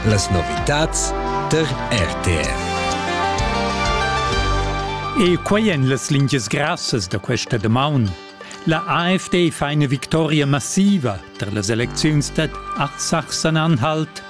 Las novitads tar RTR. E quai èn las lingias grassas da questa damaun. La AfD fa ina victoria massiva tar las elecziuns dad Artsachsen-Anhalt.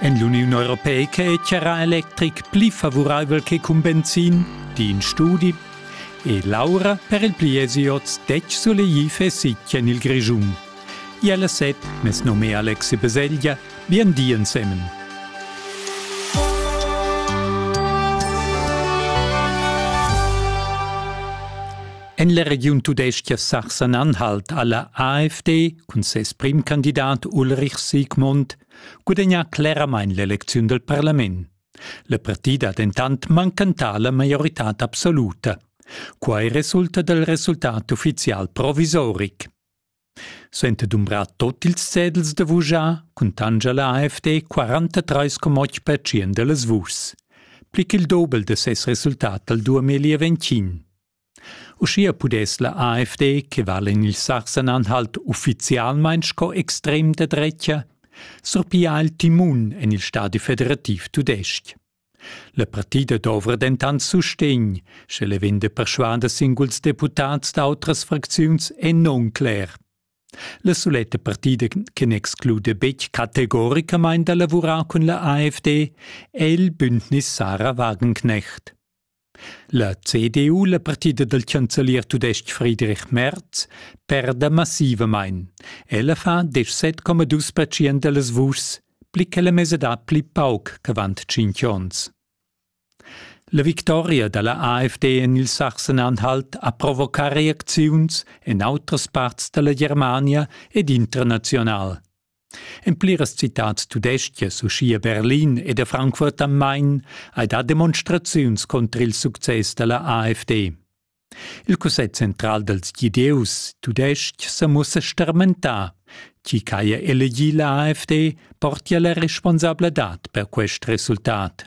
En l'Uniun Europeica è charra electric pli favuraivel che cun benzin, di in studi. E l'aura per il pli è oz detg sulegli fessi en il Grischun. Ialla set, mes nome è Alexi Beseglia, bien di ensemen. En la regiun tudestga Sachsen-Anhalt ha la AfD cun ses primcandidat Ulrich Siegmund gudagnà cleramain l'elecziun dal parlament. La partida ha dentant mancantà la maioritad absoluta. Quai resulta dal resultat uffizial provisoric. Suenter dumbrar tot ils cedels da vuschar cuntanscha la AFD 43,8% da las vuschs, pli ch'il dobel da ses resultat dal 2020. Uschia pudess la AFD, che vala en il Sachsen-Anhalt uffizialmain sco extrem da drecha, surpigliar il timun en il stadi federativ tudestg. La partida dovra dentant sustegn, sche le vegn da perschuader singuls deputads d'autras fracziuns è non cler. La suletta partida che n'exclude betg categoricamain da lavurar cun la AfD è il Bündnis Sarah Wagenknecht. La CDU, la partida dal chancelier tudestg Friedrich Merz, perda massivamain. Ella fa 17,2 percent da las vuschs, pli che la mesadad pli pauc ch'avant tschintg onns. La victoria da la AfD en il Sachsen-Anhalt ha provocà reacziuns en autras parts da la Germania ed international. En pliras citads tudestgas, uschia Berlin ed a Frankfurt am Main, hai dà demonstraziuns contra il success da la AfD. Il Cussegl central dals Gidieus tudestg sa mussa starmentà. Chi ch'haja elegì la AfD portia la responsabladad per quest resultat.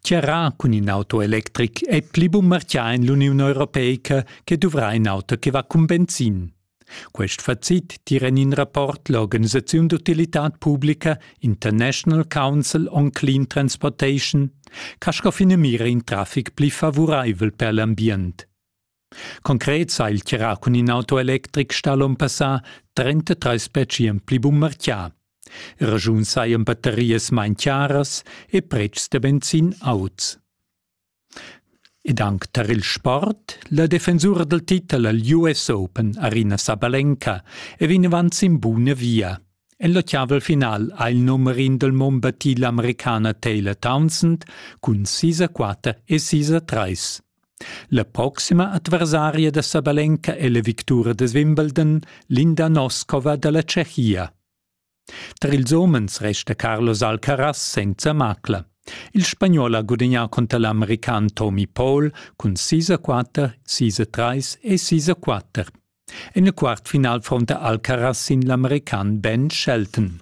Tgirà cun in auto electric è pli bunmartgà en l'Uniun europeica che duvrà in auto che va cun benzin. Quest facit tira en in rapport l'organisaziun d'utilitad publica International Council on Clean Transportation ch'ha scoffin e mira in traffic pli favuraivel per l'ambient. Concret sa il tgirà cun in auto electric stà l'on passà 33 spetschien pli bunmarchià. Ragiun sajan battarias main chiaras e pretschs da benzin auts. Ed anc tar il sport, la defensura dal titel al US Open Arina Sabalenka è vinavant sin buna via. En l'ottaval final ha il numerin del mon battì l'Americana Taylor Townsend cun 6-4 e 6-3. La proxima adversaria da Sabalenka è la victura da Wimbledon, Linda Noskova da la Tschechia. Tar ils homens resta Carlos Alcaraz senza macla. Il spagnol ha gudagnà cunter l'american Tommy Paul cun 6 a 4, 6 a 3 e 6 a 4. En il quartfinal fronta Alcaraz sin l'american Ben Shelton.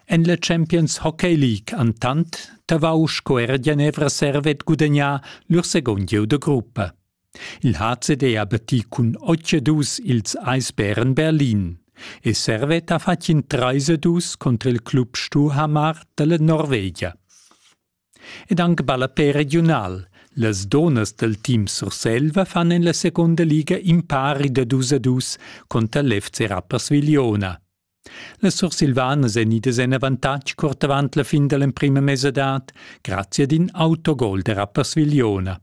En la Champions Hockey League entant tavau sco era Genevra Servet gudagnà lur second gieu da gruppa. Il HCD ha battì cun 8-2 ils Eisbären Berlin e Servet ha fatg in 3-2 contro il club Stuhamar dalla Norvegia. Ed anche ballapè regional, las donas del team Surselva fan en la seconda liga impari da 2 a 2 contra l'FC Rapperswil-Jona. Las Sursilvanas èn idas en avantatg curt avant la fin da l'emprima mesadad grazia ad in autogol da Rapperswil-Jona.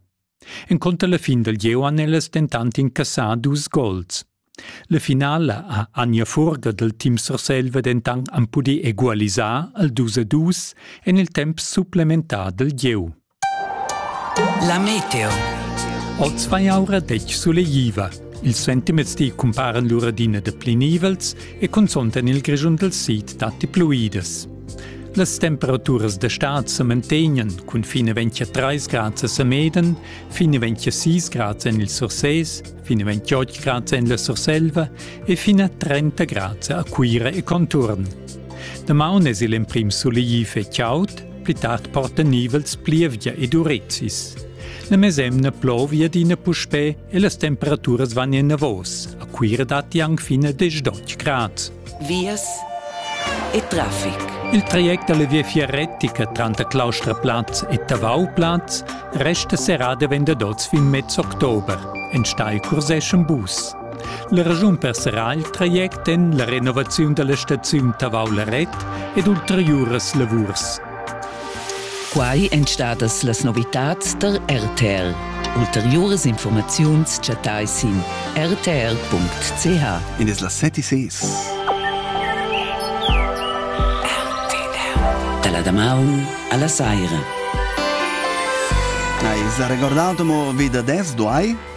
Encunter la fin dal gieu han ellas dentant incassà dus gols. La finala ha Anja Furger dal team Surselva dentant am pudì egualisar al 2 a 2 en il temp supplementar dal gieu. La meteo. Oz vai aura detg sulegliva. Ils sentiments ti cumparan lura d'ina de plinivels e consontan il grischun del sid datti pluidas. Las temperaturas d'estat se mantegnan cun fine 23 grad a Meden, fine 26 grad en il Surses, fine 28 grad en la Surselva e fine a 30 grad a Cuira e conturn. Damaun es il emprim sulegli fe chaud, Pli tard portan nivels plievgia ed urezis. La mesemna plovia adina puspè e las temperaturas van enavos. A Cuira datti anc fin a 10 grad. Vias e traffic. Il traject dalla viafier retica tranter Claustraplatz e Tavauplatz resta serrà davent ad oz fin mez october. Enstagl curseschan bus. La raschun per serrar il traject en la renovaziun da la staziun Tavau-Laret ed ulteriuras lavurs. Quai èn stadas las novitads tar RTL. Ulteriuras informaziuns chattai sin rtl.ch. In es la 76. Dalla damaun alla saira. Hai sa recordato mo vi da des duai?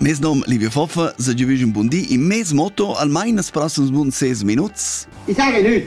Mes nom Livio Foffa, se gi un buon di in mes motto almain as passans bun 6 minuts. I sarà nüt!